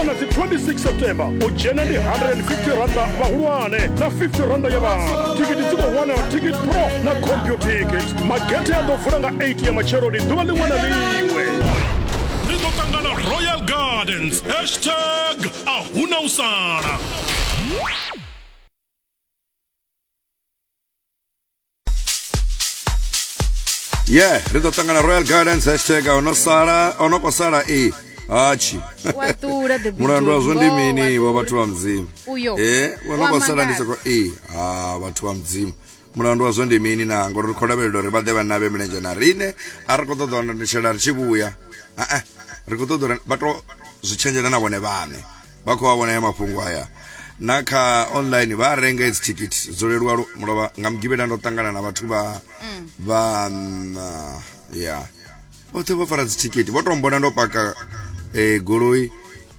na dzi 26 september u dzhena ndi 150 randa vhahulwane na 50 randa ya vhana tikiti dzi khou wanala ticket pro na computicket magethe a ḓo vula nga 8 ya matsheloni ḓuvha ḽiṅwe na ḽiṅwe ri ḓo ṱangana royal gardens hashtag a huna u sala ye ri ḓo ṱangana royal gardens hashtag o no sala o no kho sala e hatshi wa ṱula the mulandu wazwo ndi mini wa vhathu vha mudzimu uyo e o no kho sala ndi soko e ha vhathu vha mudzimu mulandu wazwo ndi mini na ngori ri khou lavhelela uri vha ḓe vha navhe milenzhe na riṋe a ri khou ṱoḓa wanatshela ri tshi vhuya a-a ri khou ṱoḓa uri vha to zwi tshenzhela na vhone vhaṋe vha khou a vhona ya mafhungo aya na kha online vha a renga edzi thikhithi dzo leluwa lu- mulovha nga mugivhela ndo ṱangana na vhathu vha vha mm, ah, ya vhoṱhe vho fara dzithikhithi vho tou mbona ndo paka eh, goloi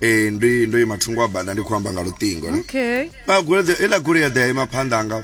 eh, ndi ndo ima thungo wa bada ndi khou amba nga luṱingo ne okay vha goloi heiḽa goloi ya ḓa ya ima phanḓa anga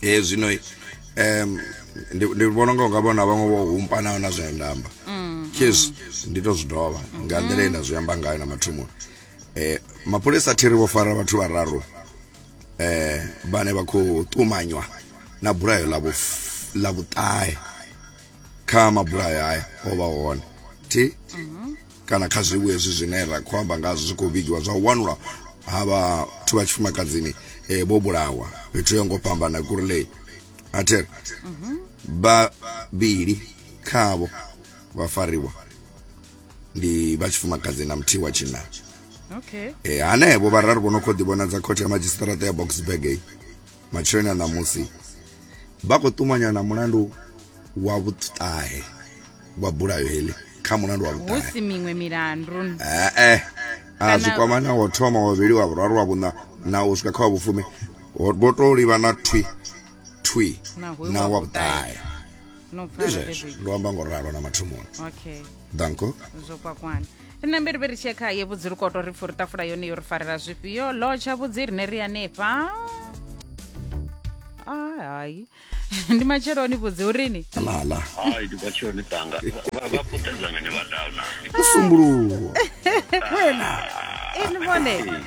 e zwino um ndi vhona unga unga vhona vhaṅwe vho humpanaho na zwine nda amba mm, yes mm. ndi to zwi dovha nga nḓila ine nda zwi amba ngayo na mathomoni eh mapholisa thiri vho fara vhathu vhararu eh vhane vha khou ṱumanywa na bulayo ḽa ḽa vhuṱahe kha mabulayo haya o vha hone thi mm-hmm. kana kha zwivhu hezwi zwine ra khou amba ngazwo zwi khou vhigiwa zwa u wanulwa ha vhathu vha tshifumakadzini eh, vho bulawa fhethu yo ngo fhambana kurley ater vhavhili khavho vha fariwa ndi vha tshifumakadzi na muthihi wa tshinna okay e, hanevho vhararu vho no khou ḓivhonadza khothe ya madzhisiṱaraṱa ya boxburg eyi matsheloni a ṋamusi vha khou ṱumanya na mulandu wa vhuṱahe wa bulayo heḽi kha mulandu wa vhuṱahe husi miṅwe milandu ee a zwi kwama na wo thoma wa vhuvhili wa vhuraru wa vhuṋa na u swika kha wa vhufumi vho to livha na thwi thwi na wa vhuṱahe ndi zwezwo ndo amba ngo ralo na mathomoni okay danko zwo kwakwana ri na mbiriviri tshia kha ye vhudziri koto ri pfuri tafula yone yo ri farela zwifhio lotsha vhudzi rine ri hanefha ai hai ndi matsheloni vhudzi urini lala hayi ndi kwatshoni banga vha vha puṱedza ngani vha dala musumbuluwo ini vhone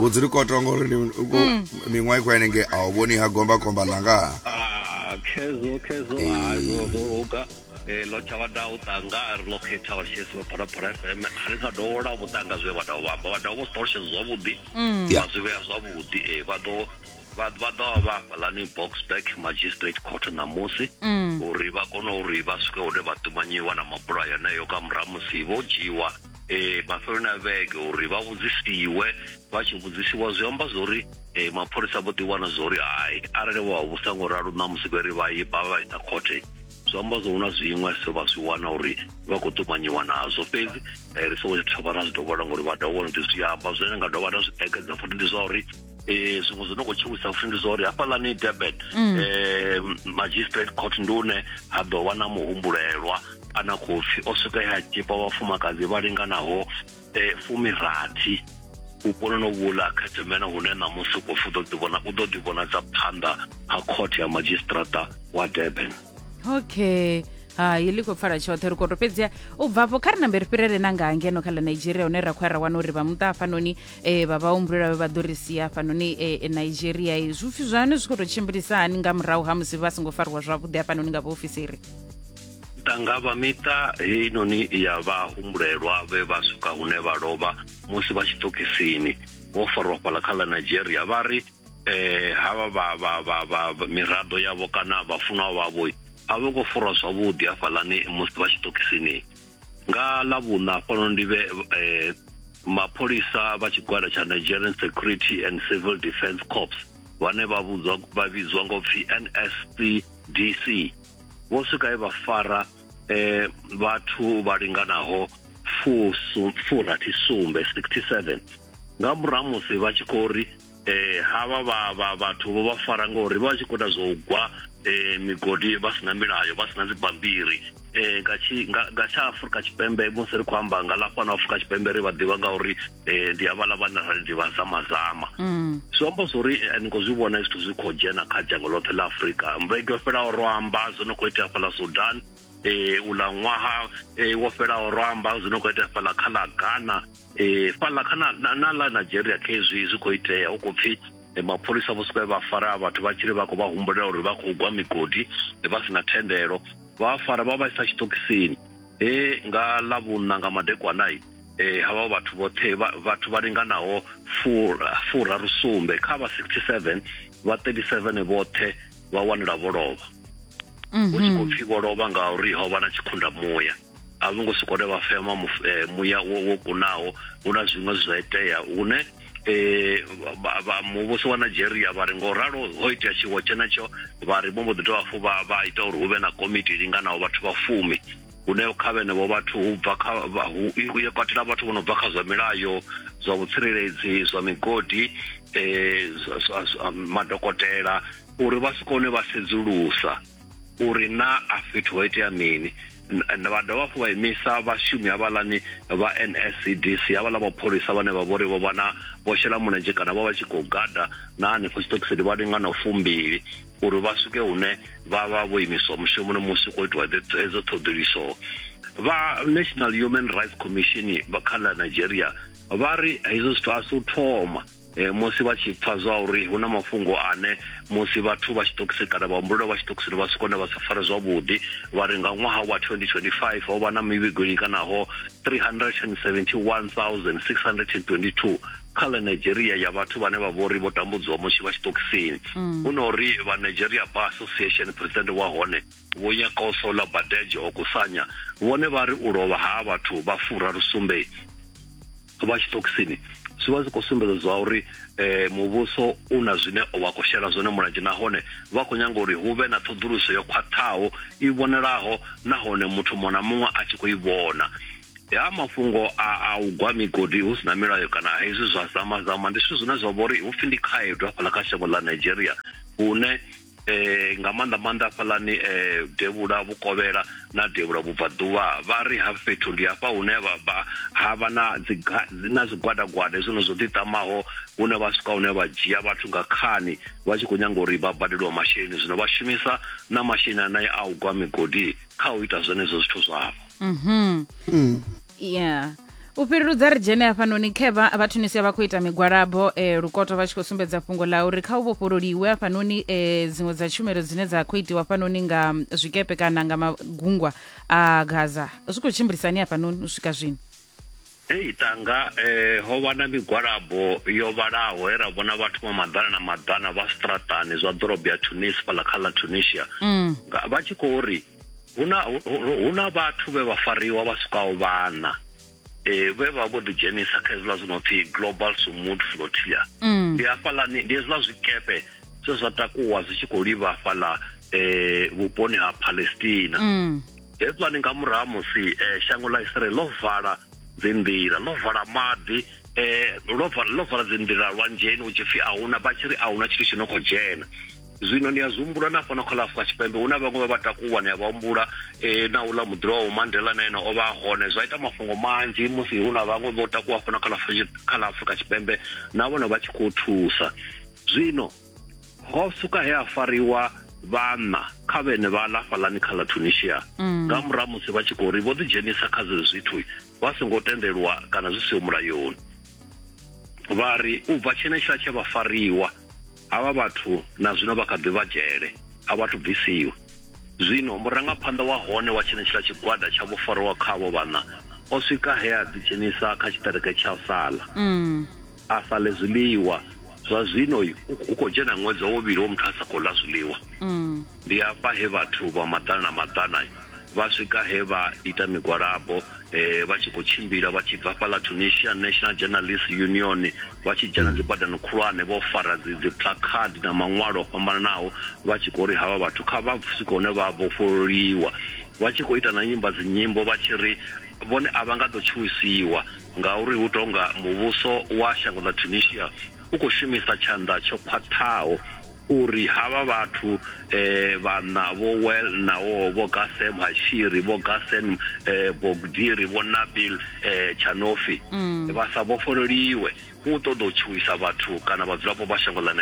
vhudzi ri khou tonga uri mm. miṅwaha i khou henenge a u vhoni ha gomba khomba ḽanga ah, khezo khezo hazozoga eh, lo tsha vhada u tanga ri lo khetha vha tshesi vha phalaphala fm a ri sa dovhola vhu tanga zwe vha dovha vha dovha vho ṱolutshedza zwavhuḓi mm. vha zwi vhea zwavhuḓi eh, vha ḓo vha ḓo vha vha fhalani boxback magistrate court ṋamusi mm. uri vha kone uri vha swike hune vha ṱumanyiwa na mabulayo heneyo ka murahu musi vho dzhiwa eh mafhelo na vhege uri vha vhudzisiwe vha tshi vhudzisiwa zwi amba zwori eh mapholisa vho ḓi wana zwori hai arali vha vhu sango ralo na musi vheri vha yi ba vha isa khothe zwi amba zwo huna zwiṅwe so vha zwi wana uri vha khou ṱumanyiwa nazwo fhedzi eh, ri songo tsha thoma ra zwi dovhola ngori vha dovha uri ndi zwi amba zwine nga dovha ra zwi ekedza futhi ndi zwa uri eh zwiṅwe zwi no khou tshiwisa futhi ndi zwa uri hafhaḽani durban mm. eh magistrate court ndi une ha ḓo wana muhumbulelwa ana khou pfi o swika ya tshipa vhafumakadzi vha linganaho um eh, fumirathi vhuponi no vhula khethemena hune ṋamusi u khou pfi u ḓo ḓivhona u ḓo ḓivhonadza phanḓa ha court ya magistrata wa durban okay hai ḽi khou pfala tshoṱhe ri khou to fhedzia u bvafho kha ri nambe ri fhirele na nga ngeno kha ḽa nigeria hune ra khou ya ra wana uri vha muṱa hafhanoni e, vha vhahumbulela vhe vha ḓo ri sia hafhanoni e, e, nigeria e, zwipfi zwanu zwi khou tou tshimbilisa hani nga murahu ha musi vha songo fariwa zwavhuḓi hafhanoni nga vhaofisiri ṱangavha miṱa heinoni ya vhahumbulelwa vhe vha swika hune vha lovha musi vha tshi ṱokisini vho farwa fhala kha ḽa nigeria vha ri eh havha vha vha vha vha vha- miraḓo yavho kana vhafunwa vhavho a vho ngo furwa zwavhuḓi hafhaḽani musi vha tshi ṱokisini nga ḽa vhuṋa hafhanoni ndi vhe eh, mapholisa vha tshigwada tsha nigerian security and civil defence corps vhane vha vhudzwa vha vhidzwa ngo pfi nscdc vho swika e vha fara eh, vhathu vha linganaho furathi sumbe 67 nga murahu musi vha tshi khou ri eh havha vha vha vhathu vho vha fara ngori vha tshi khou ita zwo gwa eh migodi vha sina milayo vha sina dzibambiri eh nga tshi nga tsha Afrika Tshipembe musi ri khou amba nga la fhano Afrika Tshipembe ri vha ḓivha nga uri eh ndi havha la vhana ri ḓivha sa mazama mm. zwi amba zwori eh, ni khou zwi vhona zwithu zwi khou dzhena kha dzhango ḽoṱhe ḽa Afrika mvege yo fhelaho ro amba zwo no khou itea fhala Sudan eh ula ṅwaha eh wo fhelaho ro amba zwi no khou itea fhala kha ḽa Ghana e, fhaḽa kha na ḽa nigeria khezwi zwi khou itea hu khou pfhi e, mapholisa vho suka vha fara vhathu vha tshiri vha khou vha humbulela uri vha khou gwa migodi e, vha si na thendelo vha fara vha vha isa tshiṱokisini he nga ḽa vhunna nga madekwanai e, havha vhathu vhoṱhe vhathu vha linganaho furaru sumbe kha vha 67 vha 37 vhoṱhe vha wanela vho lovha hu tshi khou pfhi vho lovha ngauri ho vha na tshikhunda muya a vho ngo sokou ri vha fema muf- eh, muya wo wo kunaho hu na zwiṅwe zwi zwa itea hune eh, vha- vha- muvhuso wa nigeria vha ri ngo ralo ho itea tshiwo tshenetsho vha ri vho mbo ḓi dovha hafhu vha vha ita uri hu vhe na komiti i linganaho vhathu vha fumi hune kha vhenevho vhathu hu bva kha vha- hu hu ya katela vhathu vho no bva kha zwa milayo zwa vhutsireledzi zwa migodi eh, zwa- zwa- zwa madokotela uri vha si kone vha sedzulusa uri na a fhethu ho itea mini vha dovha hafhu vha imisa vhashumi havhaḽani vha nscdc havhaḽa mapholisa vhane vha vhori vho vha na vho shela mulenzhe kana vha vha tshi khou gada na hanefho tshiṱokisini vha linga na fumbili uri vha swike hune vha vha vho imiswa mushumoni musi khou itiwa hedzo ṱhoḓiliso vha national human rights commission vha kha ḽa nigeria vha ri hezwo zwithu a si u thoma Eh, musi vha tshi pfa zwa uri hu na mafhungo ane musi vhathu vha tshiṱokisi kana vhahumbulelo vha tshiṱokisini vha si kone vha sa fare zwavhuḓi vha ri nga ṅwaha wa 2025 ho vha na mivhigo i linganaho 371622 kha ḽa nigeria ya vhathu vhane vha vhori vho tambudziwa musi vha tshiṱokisini mm. hu na uri vha nigeria bar association president wa hone vho nyakoso ḽa badeje okusanya vhone vha ri u lovha ha vhathu vha fura lusumbe vha tshiṱokisini zwi vha zwi khou sumbedza zwa uri um muvhuso u na zwine wa khou shela zwone mulenzhe nahone vha khou nyanga uri hu vhe na ṱhoḓuluso yo khwaṱhaho i vhonalaho nahone muthu muṅwe na muṅwe a tshi khou i vhona ha mafhungo a u gwa migodi hu si na milayo kana hezwi zwa zamazama ndi zwithu zwine zwa vha uri hu pfhi ndi khaedu hafhaḽa kha shango ḽa nigeria hune eh, nga maanḓa maanḓa hafhaḽani eh, devhula vhukovhela na devhula vhubvaḓuvha vha ri ha fhethu ndi hafha hune ha vha na na zwigwadagwada hezwino zwo ḓiṱamaho hune vha swika hune vha dzhia vhathu nga khani vha tshi khou nyanga uri vha badeliwa masheleni zwino vha shumisa na masheleni anaye a u gwa migodi kha u ita zwenezwo zwithu zwavho mm -hmm. mm. yeah u fhireludza ri dzhene hafhanoni khevha vha tunisia vha khou ita migwalabo um eh, lukoto vha tshi khou sumbedza fhungo ḽa uri kha u vhofhololiwe hafhanoni um eh, dziṅwe dza tshumelo dzine dza khou itiwa hafhanoni nga zwikepe kana nga magungwa a gaza zwi khou tshimbilisani hafhanoni u swika zwino Hei tanga eh ho vha na migwalabo yo vhalaho he ra vhona vhathu vha maḓana na maḓana vha straṱani zwa ḓorobo ya Tunis fhaḽa kha ḽa Tunisia mm. vha tshi khou ri hu na hu na vhathu vhe vha fariwa vha swikaho vhana eh vhe vha vho ḓi dzhenisa kha hezwiḽa zwi no pfi global sumud flotia mm. ndi hafhaḽani ndi hezwiḽa zwikepe zwe zwa takuwa zwi tshi khou livha hafhaḽa eh vhuponi ha palestina mm. hezwiḽani nga murahu musi eh, shango ḽa israel ḽo vala dzinḓila ḽo vala maḓi um ḽo vala dzinḓila lwanzheni hu tshi pfi a huna vha tshi ri a huna tshithu tshi no khou dzhena zwino ni a zwi humbula na fhano kha ḽa afrika tshipembe hu na vhaṅwe vha vha takuwa ni a vha humbula eh, na uḽa muḓiro wa mandela na ene o vha hone zwa ita mafhungo manzhi musi hu na vhaṅwe vho takuwa fhano kha ḽa afrika tshipembe na vhone vha tshi khou thusa zwino ho suka he a fariwa vhanna kha vhene vha ḽa fhalani kha ḽa tunisia mm. nga murahu musi vha tshi khou ri vho ḓidzhenisa kha zwe zwithu vha songo tendelwa kana zwi siho mulayoni vha ri u bva tshenetshiḽa tshe vha fariwa havha vhathu na zwino vha kha ḓi vha dzhele a vhathu bvisiwa zwino murangaphanḓa wa hone wa tshenetshiḽa tshigwada tsha vho fariwa khavho vhana o swika he a ḓidzhenisa kha tshiṱereke tsha sala mm. a sa ḽe zwiḽiwa zwa zwino hu khou dzhena ṅwedzi wa vhuvhili wo muthu a sa khou ḽa zwiḽiwa mm. Ndi afha he vhathu vha maḓana na maḓana vha swika he vha ita migwalabo vha tshi khou tshimbila vha tshi bva fhaḽa Tunisia National Journalists Union vha tshi dzhena dzi badani khulwane vho fara dzi dzi plakhadi na maṅwalo o fhambananaho vha tshi khou ri havha vhathu kha vha swike hune vha vhofhololiwa vha tshi khou ita na nyimba dzi nyimbo vha tshi ri vhone a vha nga ḓo tshuwisiwa ngauri hu tonga muvhuso wa shango ḽa Tunisia u khou shumisa tshanḓa tsho khwaṱhaho uri havha vhathu eh, vhanna vho Well nawo vho Gasem Hashiri vho Gasen eh, Bogdiri vho Nabil eh, Chanofi mm. vha sa vhofhololiwe u ṱoḓa u tshuwisa vhathu kana vhadzulapo vha shango ḽa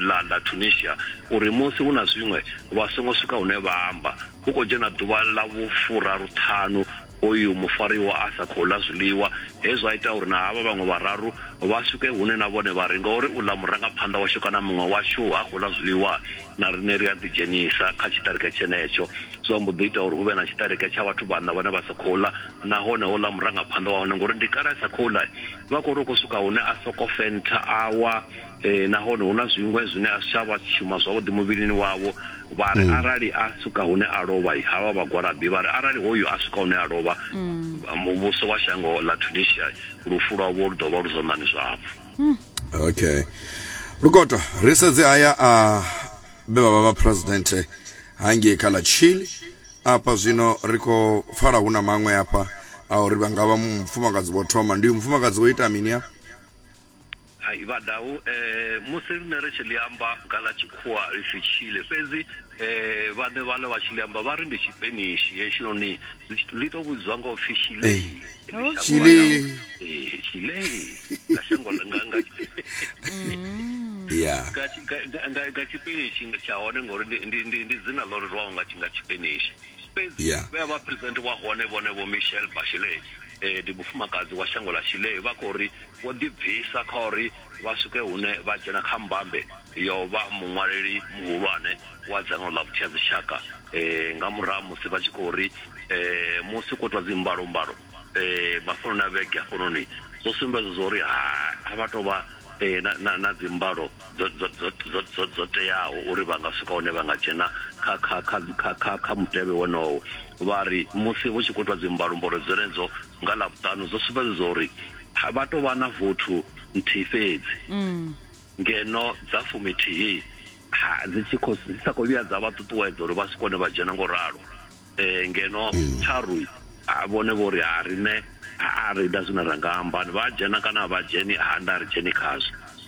la, la tunisia uri musi hu na zwiṅwe vha songo swika hune vha amba hu khou dzhena ḓuvha ḽa vhufuraruṱhanu Uyu mufariwa a sa khou ḽa zwiḽiwa, he zwa ita uri na havha vhaṅwe vhararu vha swike hune na vhone vha ri, Ngauri uḽa murangaphanḓa washu kana muṅwe washu ha khou ḽa zwiḽiwa, na riṋe ri a ḓidzhenisa kha tshiṱereke tshenetsho. Zwa mbo ḓi ita uri hu vhe na tshiṱereke tsha vhathu vhaṋa vhane vha sa khou ḽa, nahone houḽa murangaphanḓa wa hone, ngauri ndi kale a sa khou ḽa, vha khou ri u khou swika hune a sokou fentha a wa. Ee, nahone hu na zwiṅwe zwine a si tsha vha shuma zwavhuḓi muvhilini wavho. Vha ri arali a swika hune a lovha, ha vha vhagwalabi. Vha ri arali hoyu a swika hune a lovha, muvhuso wa shango ḽa Tunisia, lufu lwavho lu ḓo vha lu zwanḓani zwavho. Okay. Lukoto, ri sedze haya a vhe vha vha vha president hangei kha ḽa Chile. Afha zwino ri khou pfala hu na maṅwe afha a uri vha nga vha mufumakadzi vho thoma. Ndi uyu mufumakadzi wo ita mini afha? Hai vhadau musi riṋe ri tshi ḽi amba nga ḽa tshikhuwa ri si tshile fhedzi vhaṋe vha ḽo vha tshi ḽi amba vha ri ndi tshipenishi hetshinoni ḽi to vhudzwa nga upfhi shilei shilei shilei nga shango nga nga ya nga tshipenishi tsha hone ngori ndi ndi ndi dzina ḽo rerwaho nga nga tshipenishi fhedzi vhe vha president wa hone vhone vho Michelle Bachelet ndi mufumakadzi wa shango ḽa shilei vha khou ri Vho ḓibvisa kha uri vha swike hune vha dzhena kha mbambe ya u vha muṅwaleli muhulwane wa dzangano ḽa vhutshiadzitshaka nga murahu ha musi vha tshi khou ri musi khou itwa dzimbalombalo mafheloni a vhege hafhanoni zwo sumbedza zwa uri a vha tou vha na dzimbalo dzo teaho uri vha nga swika hune vha nga dzhena kha mutevhe wonowo. Vha ri musi hu tshi khou itwa dzimbalombalo dzenedzo nga Ḽavhuṱanu zwo sumbedza zwa uri ha vha tou vha na vothu nthihi fhedzi mm. ngeno dza fumithihi ha dzi tshi khou dzi sa khou vhuya dza vha ṱuṱuwedza uri vha si kone vha dzhena ngo ralo um ngeno mm. tharu vhone vho ri ha rine a ri ita zwine ra nga amba vha dzhena kana vha dzheni ha nda ri dzheni khazwo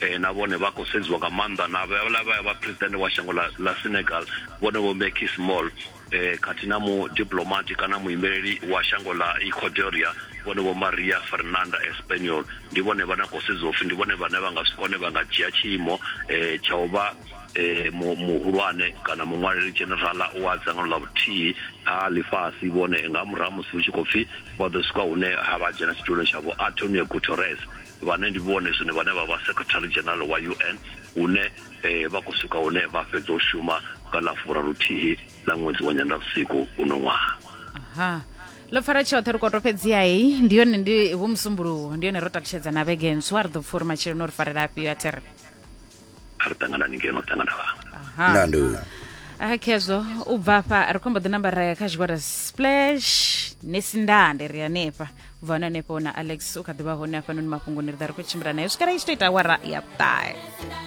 eh, na vhone vha khou sedziwa nga maanḓa na vhala vha vha president wa shango la, la senegal vhone vho mbecky small eh, khathihi na mudiplomati kana muimeleli wa shango la equatoria vhone vho maria fernanda espaniol ndi vhone vhane khou sedziwa upfi ndi vhone vhane vha nga swika hone vha nga dzhia tshiimo eh, tsha u vha eh, muhulwane kana muṅwaleli generala wa dzangano ḽa vhuthihi ha ḽifhasi vhone nga murahu musi hu tshi khou pfi vha ḓo swika hune ha vha dzhena tshituloni tshavho antonio guterres vhane ndi vhone zwino vhane vha vha Secretary General wa UN hune vha khou swika hune vha fhedza u shuma nga ḽa furaluthihi ḽa ṅwedzi wa nyandavhusiku uno ṅwaha Aha. ḽo pfara tshoṱhe ri koto fhedziha heyi ndi yone ndi vho musumbuluwo ndi yone ro takutshedza na vhege ntswa ri ḓo pfha uri matshelo no ri farela afhio a thiri a ri ṱanganani ngeno ṱangana vhanga nando a khezwo u bva afha ri khombo ḓi namba ra ya kha tshigwada splash nesindande ri hanefha u bva hone hanefho na alex u kha ḓivha hone hafhanoni mafhungoni ri ḓa ri khou tshimbila nayo swikela i tshi to ita wara ya ṱahe